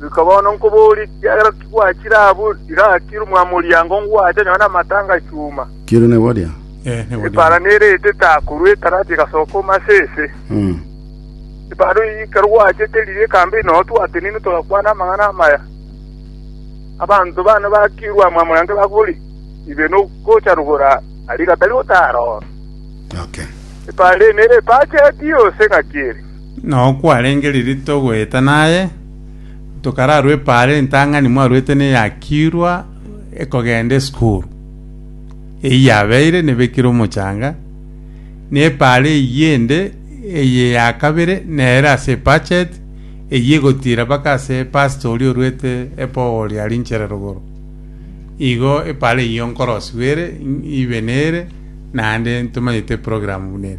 Goika bono nkoboorie, ekiagera kigwachire abwo, iga akire omwamoriango ngwache nyone amate angachuma. Kere ne boria. Eh, ne boria. Epaara nere etete akorwa etarati egasoka omo ase ese. Mm. Epaara oyo ekero gwachete riria ekambe inoo twatenenwe togakwana amang'ana amaya. Abanto bane bakirwa amo amo yange bakoboria, Ibe nogocha rogoro aria gatari gotaara oo? Okay. Epaara eye nere epacheti yonsi ng'aki ere. Nao kwarenge ririto goeta naye, tokararwa epaara entang'ani mwarwete neyakirwa ekogenda esukuru. Eyio yabeire nebekire omochanga, na epaara eyio ende eye ya kabere nere ase ebudget, eyio egotiira mpaka ase pastor oria orwete epogoro ria rinchere rogoro. Igo epaara eyio nkorosiwa ere, ibe nere, naende ntomanyete eprogramu buna ere.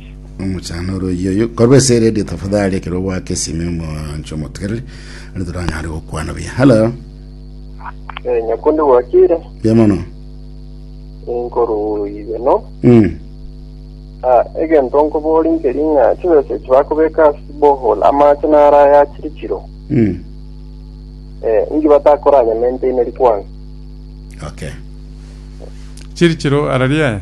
omochano oro oyio oyio korwa ase radio tafadhali ekero ogoaka esime omoncho omotegereri ari toranyare gokwana buya hello Eh, nyakundi gwakire buya mono inkoru ibeno Mm. Ah, egento nkobori nkeri ng'a chibesa echi bakobeka ase bohol amache naraya chiri chiro Mm. eh, inki batakoranya maintain rikwana okay chiri chiro araria aya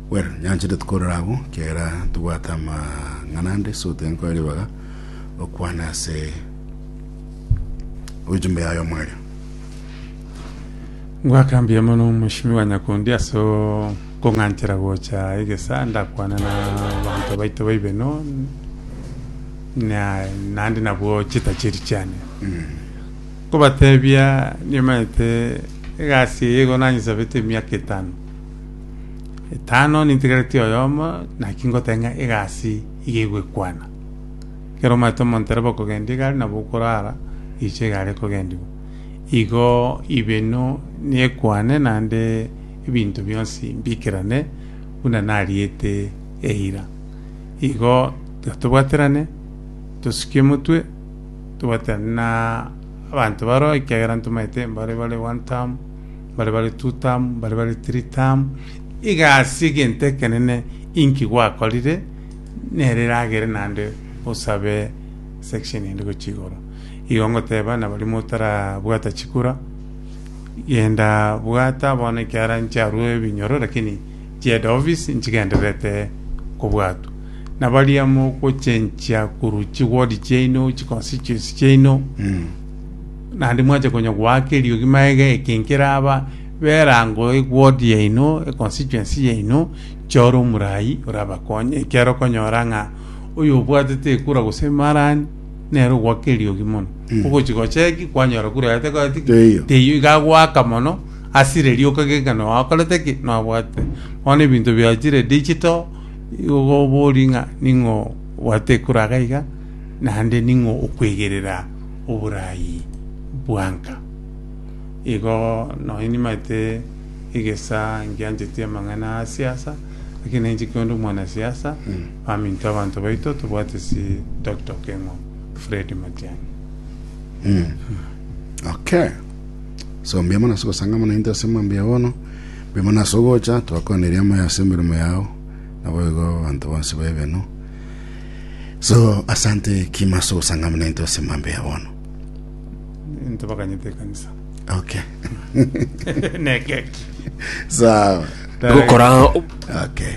Well, nyanchete tkorora abwo kera tobwate amang'ana ande so tiga nkore ribaga okwana ase ojumbe yaye omwario. Ngwakambia mono Mweshimiwa Nyakundi ase okong'anchera gocha egesa ndakwane na abanto baito baibe no na naende nabwo chitachiri chiane nkobatebia nimanyete egasi eye igo nanyesabete emiaka etano Etano nintegereti oyomo naki ngoteba ng'a egasi iga egwekwana. Ekero omanyete omontereba okogenda igare nabo okorara oiche egare ekogendigwa. Igo ibeno nekwane naende ebinto bionsi mbikerane buna nariete eira. Igo tiga tobwaterane tosukie omotwe tobwaterane na abanto baroo ekiagera ntomanyete mbare bare one term. mbare bare Tutamu, mbare bare Tiritamu, igasi egento ekenene inki gwakorire, nere eragere naende osabe section ende gochia igoro. Igo ngoteba nabaria motarabwata chikura, genda bwata bono ekiara nchiarue ebinyoro lakini chieda office nchigendererete kobwatwa. Nabaria mogochenchia korwa chiward chiaino, chiconstituency chiaino, Naende mwanche konya goaka eriogi magega eke nkeraba b'erango eward yaino, econstituency yaino, chore omorai orabakonye. Ekiagera okonyora ng'a oyobwatete ekura gose emarani nere ogoaka eriogi mono. Ogochia gocheki kwanyora kura yaye tekoreti ki? Teiyo. Teiyo iga agoaka mono ase riria okageka ng'a noakorete ki? Noabwatete. Bono ebinto biachire digital igo oborie ng'a ning'o obwate ekura iga iga naende ning'o okwegerera. oboraai bwanka. Igo nonya nimaete egesaa nkiancheti amang'ana a siasa, lakini nainche kionde omwanasiasa, baminto abanto baito tobwate si tok tok eng'o Fred Matiang'i. Okay. So mbuya mono ase ogosangama naintwe ase mambia bono. Mbuya mono ase ogocha, twakoneria moyo ase emeremo yao. Naboigo abanto bonsi baebeno. So asante kimaso gosangama nainto ase mambe ya bono. into bakanyete ekanisa Okay. nekeki Sawa. gokora Okay.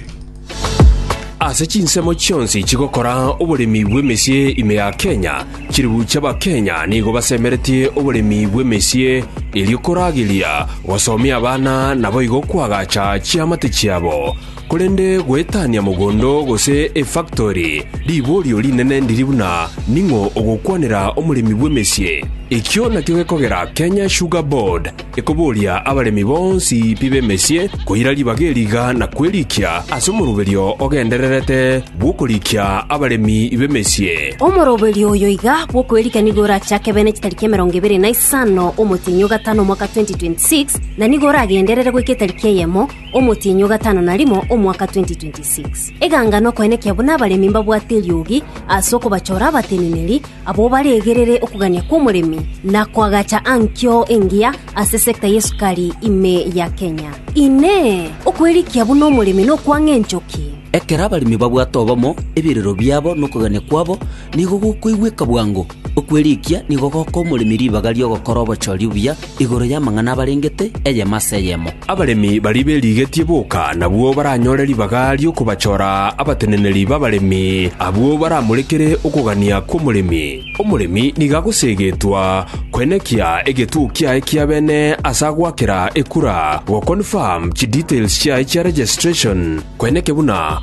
ase chinsemo chionsi chigokora oboremi bw'emesie ime ya Kenya, chiribu chi'Abakenya nigo basemeretie oboremi bw'emesie erio korageria gosomia abana naboigo koagacha chiamate chiabo. Korende goetania mogondo gose efaktori, riborio rinene ndiri buna ning'o ogokwanera omoremi bw'emesie. Ekio nakio gekogera Kenya Sugar Board ekoboria abaremi bonsi pi b'emesie koira ribaga eri iga na kwerikia ase omoroberio ogendererete bw'okorikia abaremi b'emesie. Omoroberio oyo iga bw'okwerikia nigo orachake bene chitariki emerongo ebere na isano omotienyi o gatano omwaka 2026, na nigo oragenderere goika etariki eyemo Omotienyi o gatano na rimo omwaka 2026. Eganga nokoenekia buna abaremi mbabwate eriogi ase okobachora abateneneri abwo baregerere okogania kw'omoremi na koagacha ankio engiya ase sector y'esukari ime ya Kenya. Inee! Okwerikia buna omoremi nokwang'a enchoki? Ekero abaremi babwate obomo, ebirero biabo na okogania kwabo nigo gokoigweka bwango. Okwerikia nigo goka omoremi ribaga ri'ogokora obochori obuya igoro y'amang'ana abarengete, eyemo ase eyemo. Abaremi baria berigetie boka nabwo baranyore ribaga ri'okobachora abateneneri b'abaremi, abwo baramorekere okogania kw'omoremi. Omoremi nigo agoseegetwa koenekia egetuo kiaye kia bene ase agoakera ekura, go-confirm chidetails chiaye chia registration, koeneke buna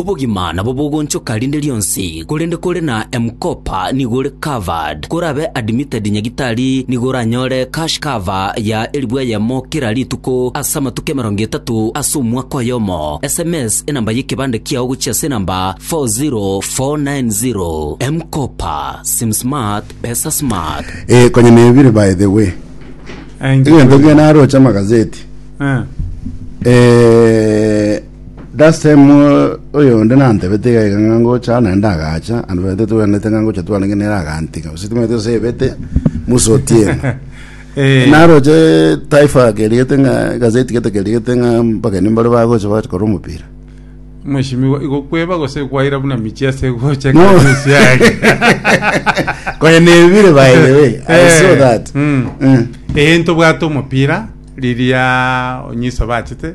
Obogima nabo bogonchoka rinde rionsi, korende kore na M-Kopa nigo ore covered. Korabe admitted nyagitari nigo oranyore cash cover ya elifu eyemo kera rituko ase amatuko emerongo etato ase omwaka oyomo. Sms enamba y'ekebande kiao gochia ase enamba 40490. M-Kopa, sim smart, pesa smart. Eh, konya nebire by the way. Eh, inche Egento nabire. kiaye naroche amagazeti. Eh. Eh, Dasemwa oyonde nantebete iga iga ng'a ngocha naende ndagacha, ande tobabete twenerete ng'a ngocha twarenge nere agantiga, gose timanyete gose ebete Musa Otieno. Eh, Naroche Taifa kerigete ng'a gazeti gete kerigete ng'a abageni mbare bagocha bagocha korora omopira. Mheshimiwa, igokweba gose kwaira buna michi ase gocha No. Christmas yake. Konya nebire by the way. I saw Eh, that. mm. Mm. Eh, ntobwate omopira riria onyiso bachete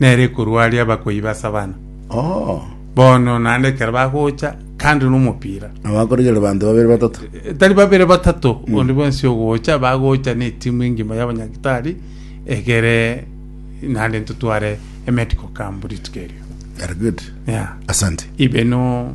nere ekorua aria abakuai ba Savana. Oo. Bono naende ekero bagocha kando nomopira Nabo akorigera banto babere batato. E, tari babere batato onde bwensi ogocha bagocha na etimu engima y'abanyagitari egere naende ntotware emedical camp rituko erio Very good. yeah. Asante. ibe no